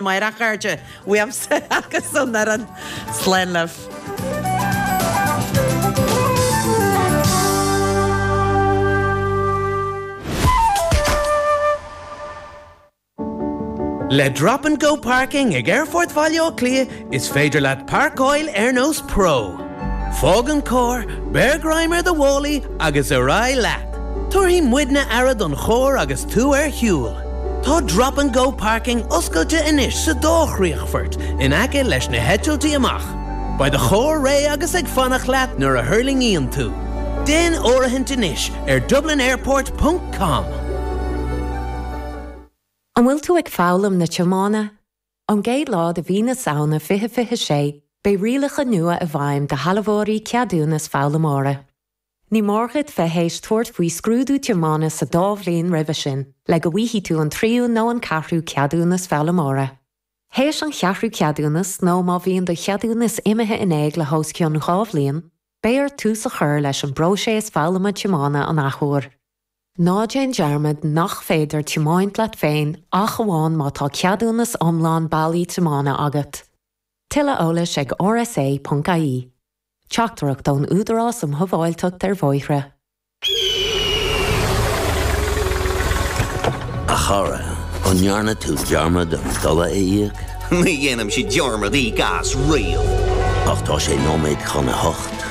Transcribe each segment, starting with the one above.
A chairde, uaimse agus ón fhoireann, slán libh. Le Drop and Go Parking ag Aerfort Bhaile Átha Cliath, is féidir leat páirceáil ar nós pro. Fág an carr, beir greim ar do mhálaí agus ar aghaidh leat. Tabharfaidh muidne aire don charr agus tú ar shiúl. Tá 'Drop and Go Parking' oscailte anois sa dá chríochfort in aice leis na heitiltí amach. Beidh do charr réidh agus ag fanacht leat nuair a thuirlingíonn tú. Déan áirithint anois ar dublinairport ponc com. An bhfuil tú ag foghlaim na tiomána? Ón gcéad lá de mhí na Samhna fiche fiche sé, beidh rialacha nua i bhfeidhm do shealbhóirí ceadúnas foghlaimeora. Ní mór dhuit bheith théis tabhairt faoi scrúdú tiomána sa dá bhliain roimhe sin le go bhfaighidh tú an tríú nó an ceathrú ceadúnas foghlaimeora. Théis an cheathrú ceadúnas nó má bhíonn do cheadúnas imithe in éag le hós cionn dhá bhliain, beidh ort tús a chur leis an bpróiséas foghlama tiomána an athuair. Ná déan dearmad nach féidir tiomáint leat féin ach amháin má tá ceadúnas iomlán bailí tiomána agat. Tuilleadh eolais ag rsa ponc ie. Teachtaireacht ón Údarás um Shábháilteacht ar Bhóithre. A chara, an ndearna tú dearmad an dola a íoc? Ní dhéanaimse dearmad íoc as riamh. Ach tá sé nóiméad chun a hocht.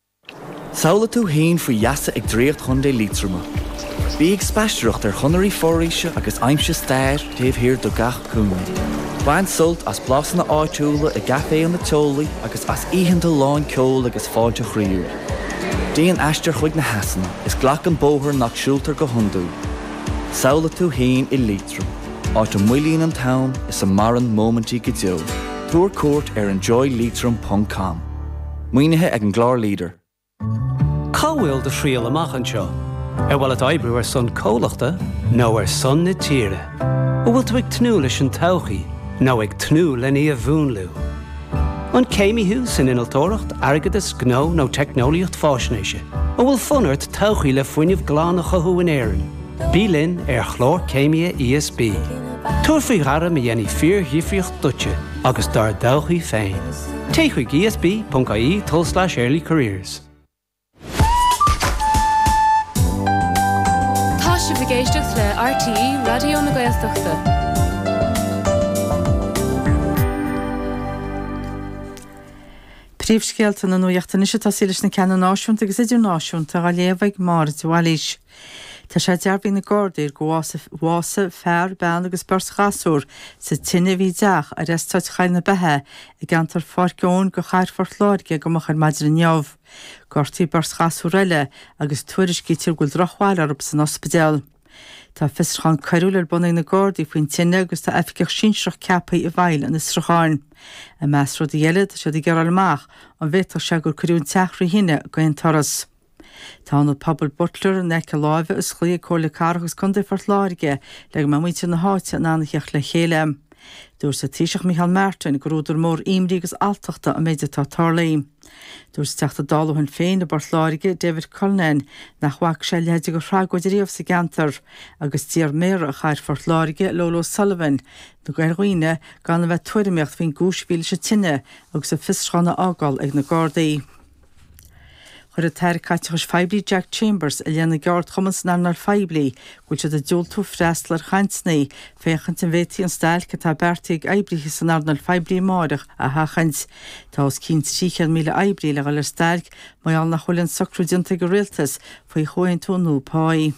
Samhlaigh tú fhéin faoi gheasa ag draíocht Chontae Liatroma. Bí ag spaisteoireacht ar chonairí foraoise agus aimsigh stair taobh thiar de gach cúinne. Bain sult as blasanna áitiúla i gcaiféanna teolaí agus as oícheanta lán ceoil agus fáilte chroíúil. Déan aistear chuig na heasanna is glac an bóthar nach siúltar go hiondúil. Samhlaigh tú fhéin i Liatroim, áit a moillíonn an t-am is a maireann móimintí go deo. Tabhair cuairt ar enjoyliatroim.com. Maoinithe ag an gclár leader. Cá bhfuil do thriall amach anseo? Ar mhaith leat oibriú ar son comhlachta nó ar son na tíre? An bhfuil tú ag tnúth leis an todhchaí nó ag tnúth lena múnlú? An céimí thú san innealtóireacht, airgeadas, gnó nó teicneolaíocht faisnéise? An bhfuil fonn ort todhchaí le fuinneamh glan a chothú in Éirinn? Bí linn ar Chlár Céimithe ESB. Tabhair faoi ghairm a dhéanfaidh fíordhifríocht duitse agus dár dtodhchaí féin. Téigh chuig esb.ie tulslais early careers. Tá sibh ag éisteacht le RTÉ Raidió na Gaeltachta. Príomhscéalta na nuachta anois tosaímid leis na ceanna náisiúnta agus idirnáisiúnta á léamh ag Máire de Bhailís. Tá sé dearbhaithe ag na Gardaí gur bhásaigh fear, bean agus beirt ghasúr sa tine a bhí i dteach ar eastát Choill na Beithe i gceantar Pháirc Eoin de Chathair Phort Láirge go moch ar maidin inniu. Gortaíodh beirt ghasúr eile agus tuairiscítear go bhfuil drochbhail orthu san ospidéal. Tá fiosrúchán coiriúil ar bun ag na Gardaí faoin tine agus tá oifigeach sinsearach ceaptha i bhfeighil an fhiosrúcháin. I measc rudaí eile, tá siad ag iarraidh a fháil amach an bhféadfadh sé gur cuireadh an teach trí thine d'aon turas. Tá Ionad Pobail Butler in aice láimhe osclaithe ag Comhairle Cathrach agus Contae Phort Láirge le go mbeadh muintir na háite in ann a theacht le chéile. Dúirt an Taoiseach Micheál Martin gur údar mór imní agus alltachta an méid atá tarlaithe. Dúirt an Teachta Dála ó Shinn Féin i bPort Láirge, David Cullinane, nach bhfaca sé a leithéide de thragóid riamh sa gceantar agus d'iarr Méara Chathair Phort Láirge, Lola O'Sullivan, ar dhaoine gan a bheith ag tuairimíocht faoin gcúis a bhí leis an tine agus an fiosrúchán a fhágáil ag na Gardaí. Chuir an tAire Caiteachais Phoiblí Jack Chambers i leith na gceardchumann san earnáil phoiblí go bhfuil siad ag diúltú freastal ar chainteanna féachaint an bhféadfaí an stailc atá beartaithe ag oibrithe san earnáil phoiblí amárach a sheachaint. Tá os cionn 300,000 oibrí le dhul ar stailc mar gheall nach bhfuil an socrú déanta ag an Rialtas faoi chomhaontú nua páí.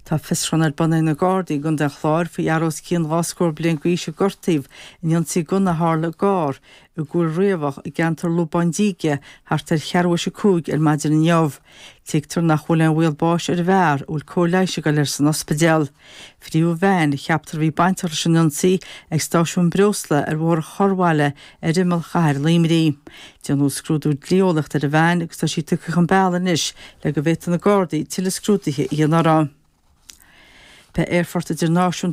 Tá fiosrúchán ar bun ag na Gardaí i gContae an Chláir faoi fhear os cionn dhá scór bliain d'aois a gortaíodh in ionsaí gunna a tharla i gcarr i gCúil Riabhach i gceantar Lúbán Díge thart ar cheathrú tar éis a cúig ar maidin inniu. Tuigtear nach bhfuil aon bhaol báis ar an bhfear, a bhfuil cóir leighis ag dul air san ospidéal. Frítheadh veain a cheaptar a bhí bainteach leis an ionsaí ag stáisiún breosla ar Bhóthar an Chorrbhaile ar imeall chathair Luimní. Déanadh scrúdú dlí-eolaíochta ar an veain agus tá sí tugtha chun bealaigh anois le go bhféadfadh na Gardaí tuilleadh scrúduithe a dhéanamh uirthi. Beidh Aerfort Idirnáisiúnta.